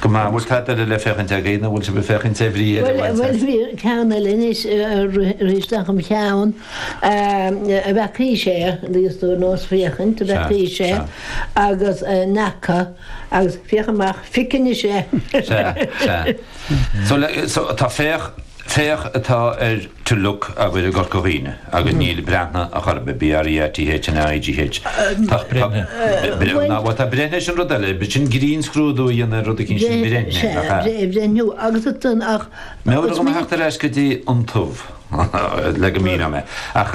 Go maith, bhuel tá deireadh le féachaint againn, nó an bhfuil sibh ag féachaint ar bhrí eile a bhaint as? Bhuel, bhí ceann eile anois, rith isteach i mo cheann ab ea cliste, níos dóigh nó is féachaint ab ea sea agus nach ea agus féach amach, pioc anois é! Sea, sea. So le, so tá féach. Féach atá ar to look agaibh i gCorca Dhuibhne agus níl breathnaigh ar chor ar bith, B-r-e-a-t-h-n-a-i-g-h. Tá Breathnaigh, bhuel tá breithnigh sin rud eile, b'fhit sin grinnscrúdú a dhéanamh ar rud eicínt sin breithnigh, nach ea? Sea, breithnigh agus ach. Meabhraigh dom a theacht ar ais go dtí an ubh le go míneoidh mé, ach.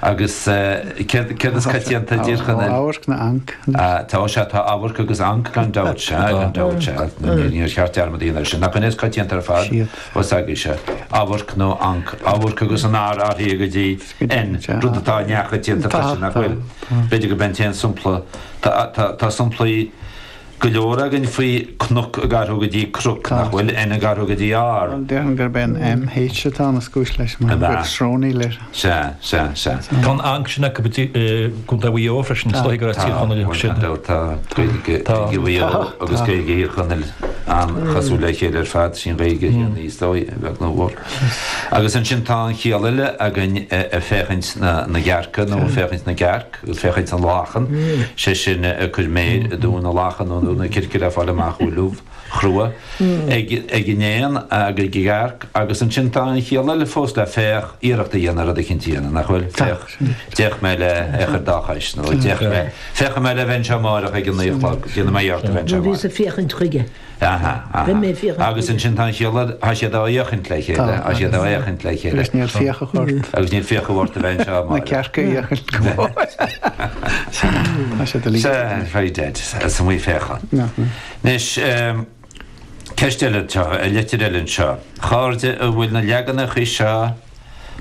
agus céard is coitianta i dTír Chonaill, amharc nó anc. Tá sé, tá amharc agus anc gan dabht, sea, gan dabht, sea, níor cheart dearmad a dhéanamh air sin. Nach é an é is coitianta ar fad, os ag é seo, amharc nó anc, amharc agus an R athraithe go dtí N, rud atá neamhchoitianta freisin, nach bhfuil? B'fhéidir gurb in an t-aon sampla, tá, tá, tá samplaí. go leor againn faoi cnoc ag athrú go dtí croc, nach bhfuil N ag athrú go dtí R. Bhuel, déarfainn gurb é an M, H atá ina chúis leis mar go bhfuil srónaíl air. Sea, sea, sea. Tá an anc sin acu i gContae Mhaigh Eo freisin, is dóigh gur as Tír Tá, Chonaill acu sin. bhuel, tá, tá Gaeilge, Tá. Gaeilge Mhaigh Eo Tá, agus tá. Gaeilge Thír Chonaill an-chosúil le chéile ar fad, is í an Ghaeilge chéanna is dóigh, a bheag nó a mhór. Agus ansin tá an chiall eile againn eh, eh, féachaint na, na gcearca nó féachaint na gcearc. féachaint na lachan, sé sin cur méir i dtóin na lachan nó i dtóin na circe le fáil amach an bhfuil ubh chrua ag an éan ag an gcearc agus ansin tá an chiall eile fós le féach iarracht a dhéanamh rud éicint a dhéanamh nach bhfuil? Féach, d'fhéach mé lena chur dá chois nó d'fhéach mé, féachfaidh mé le bheith anseo amárach ag a naoi a chlog, déanfaidh mé iarracht a bheith anseo amárach. Bhíos ag féachaint chuige. Aha, aha. Agus ansin tá an chiall eile, tá siad á fhéachaint le chéile, tá siad á fhéachaint le chéile. Agus níl fiacha ort. Agus níl fiacha ort a bheith anseo, amárach. Na cearca a fhéachaint go mór. Tá siad uilig. Sea, very dead, as an Mhaigh Féachann. Anois, ceist eile anseo, leitir eile anseo. A chairde an bhfuil na leaganacha seo.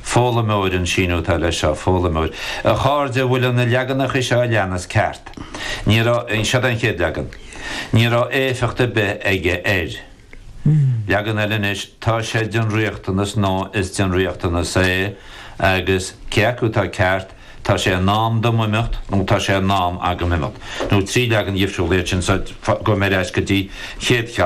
Foghlaimeoir, An síniú atá leis seo, Foghlaimeoir, A chairde, an bhfuil an na leaganacha seo a leanas ceart? Ní raibh, seo é an chéad leagan, Ní raibh éifeacht ar bith aige air. Leagan eile, anois, Tá sé den riachtanas nó Is den riachtanas é agus, cé acu atá ceart, Tá sé in am dom imeacht nó Tá sé in am agam imeacht. Nó trí leagan dhifriúla iad sin so, gabh muid ar ais go dtí an chéad cheann,